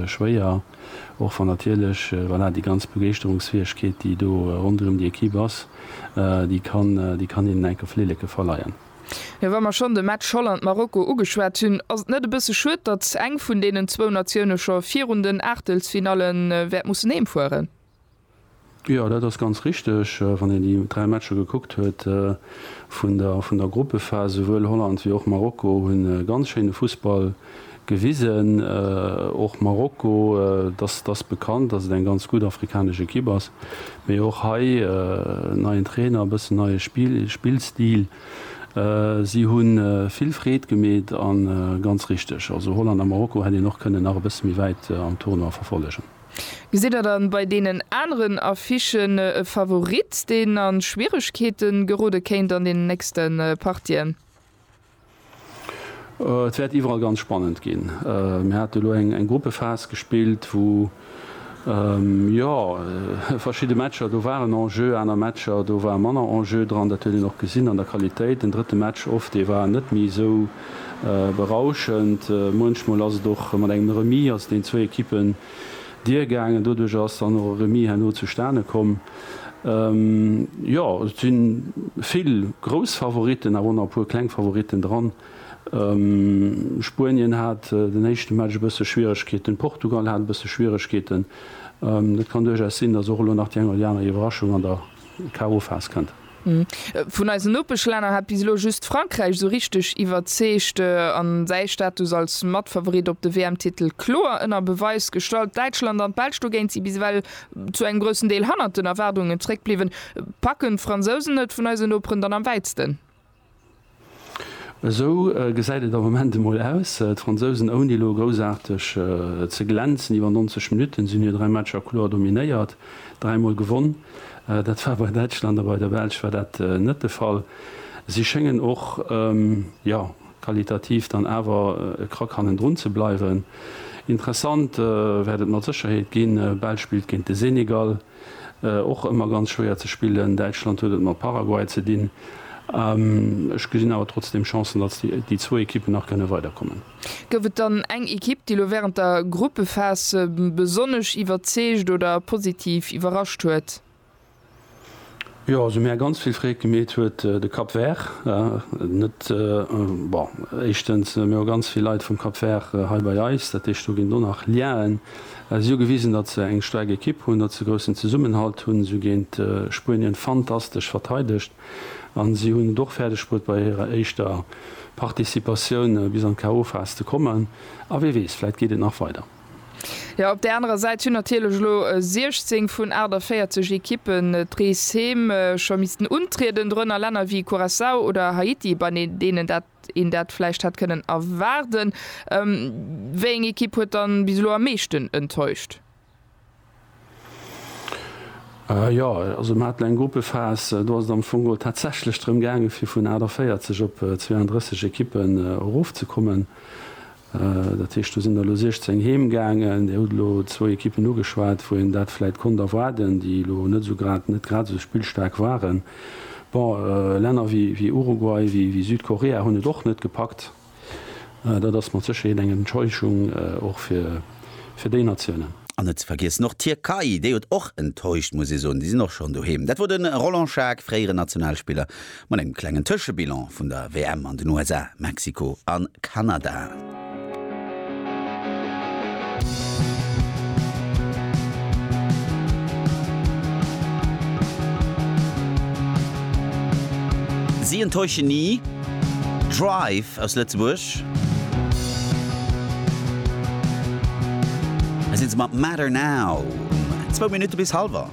schwéier, och wann natierlech, voilà, déi ganz Begeeschterungsfäegkeet, déi do ronderëm déi Equipe ass, déi kann, déi kann hinnen enke Flilleke verleien. Jo, wa mer schonn de Match Holland-Marokko ugeschwat hunn, ass et net e bësse schued, datt eng vun deenen zwou Natioune scho virun den Aachtelsfinalle wäert mussen heemfueren? Jo, dat ass ganz richteg. Wann een déi dräi Matcher gekuckt huet vun der vun der Gruppephas, souwuel Holland wéi och Marokko hu ganz schéine Fussball gewisen. Och Marokko, dass dass bekannt, dass et eng ganz gutt afrikanesch Ekipp ass, mee och hei neien Trainer, e bëssen neie Spill Spillstil. Si hu vill Freed gemeet a ganz richteg, also Holland a Marokko hätt een och kënnen nach e bësse méi wäit am Tournoi verfollegen. Gesitt der dann bei deenen aneren Affichen e Favorit, deen an Schwieregkeete gerode kéint an den nächste Partien? Et wäert iwwerall ganz spannend ginn. Mir haten elo eng Gruppephas gespillt, wou jo verschidde Matcher do waren en jeu, aner Matcher do war manner en jeu dran. Dat huet een och gesinn an der Qualitéit. Den drëtte Match of, dee war net méi esou. berauschend. Muenchmol ass et och mat engem Remis ass deen zwéi Ekippen d'Dier-gaangen. Doduercher ass dann och e Remis herno zustane komm. Jo, et si vill grouss Favoritten, awer och nach e puer kleng Favoritten dran. Spuenien hat den éischte Match e bësse Schwieregkeeten, Portugal hat e bësse Schwieregkeeten. Et kann duerchaus sinn, dass och elo nach déi eng oder déi aner Iwwerraschung an der K.O.-Phas kënnt. Vun eisen Nopeschlänner hat bis elo just Frankräich esou richteg iwwerzeegt an säi Status als Matfavorit op de WM-Titel kloer ënner Beweis gestallt. Däitschland an d'Belsch dogéint si bis ewell zu engem groussen Deel hannert den Erwaardungen zeréckbliwwen. Packen d'Fransousen et vun eisen Noperen dann am wäitsten? Esou gesäit et am Moment emol aus. D'Fransousen, ouni elo groussaarteg ze glänzen, iwwer 90 Minutten sinn hir 3 Matcher kloer dominéiert, dräimol gewonn. Dat war bei Däitschland a bei der Belsch war dat net de Fall. Si schéngen och, jo, qualitativ dann awer e Krack hannendrun ze bleiwen. Interessant wäert et mat Sécherheet ginn, Belsch spillt géint de Senegal. Och ëmmer ganz schwéier ze spillen. Däitschland huet et mat Paraguay ze dinn. Ech gesinn awer trotzdem Chancen, datt déi zwou Ekippen nach kënne weiderkommen. Gouf et dann eng Ekipp, déi elo wärend der Gruppephas besonnesch iwwerzeegt oder positiv iwwerrascht huet? Jo, also mär ganz vill Freed gemeet huet de Cap Vert net. Bon, éischtens mär hu ganz vill Leit vum Cap Vert hei bei eis, dat heescht do ginn do nach Liaen. Si hu gewisen, datt se eng staark Ekipp hunn, datt se groussen Zesummenhalt hunn. Si hu géint Spuenien fantastesch verteidegt a si hunn et och fäerdeg bruet bei hirer éischter Participatioun bis an d'KO-Phas ze kommen. A wee weess, vläit geet et nach weider. Jo, op där anerer Säit hunn natierlech elo 16 vun 48 Ekippen d'Rees heem scho missten untrieden, dorënner Länner wéi Curaçao oder Haiti, bei deenen een dat vläicht hätt kënnen erwaarden. Wéieng Ekipp huet dann bis elo am meeschten enttäuscht? Jo, also mer haten eng Gruppephas, do ass et am Fong geholl tatsächlech drëm gaangen, fir vun 48 op 32 Ekippen erofzekommen. Dat heescht, do sinn der elo 16 heem gaangen. Dir hutt elo zwou Ekippen ugeschwat, wou een dat vläicht konnt erwaarden, déi elo net esou grad, net grad esou spillstaark waren. Bon, Länner wéi Uruguay, wéi Südkorea hunn et och net gepackt. Dat ass mat Sécherheet eng Enttäuschung och fir déi Natiounen. An net ze vergiessen och d'Tierkei, déi huet och enttäuscht, muss ee soen. Déi sinn och schonn doheem. Dat wor de Roland Schaack, fréieren Nationalspiller, mat engem klengen Tëschebilan vun der WM an den USA, Mexiko a Kanada. Si enttäuschen ni, Drive aus Lëtzebuerg. Hei sinn se mat Matter Now um zwou Minutte bis halwer.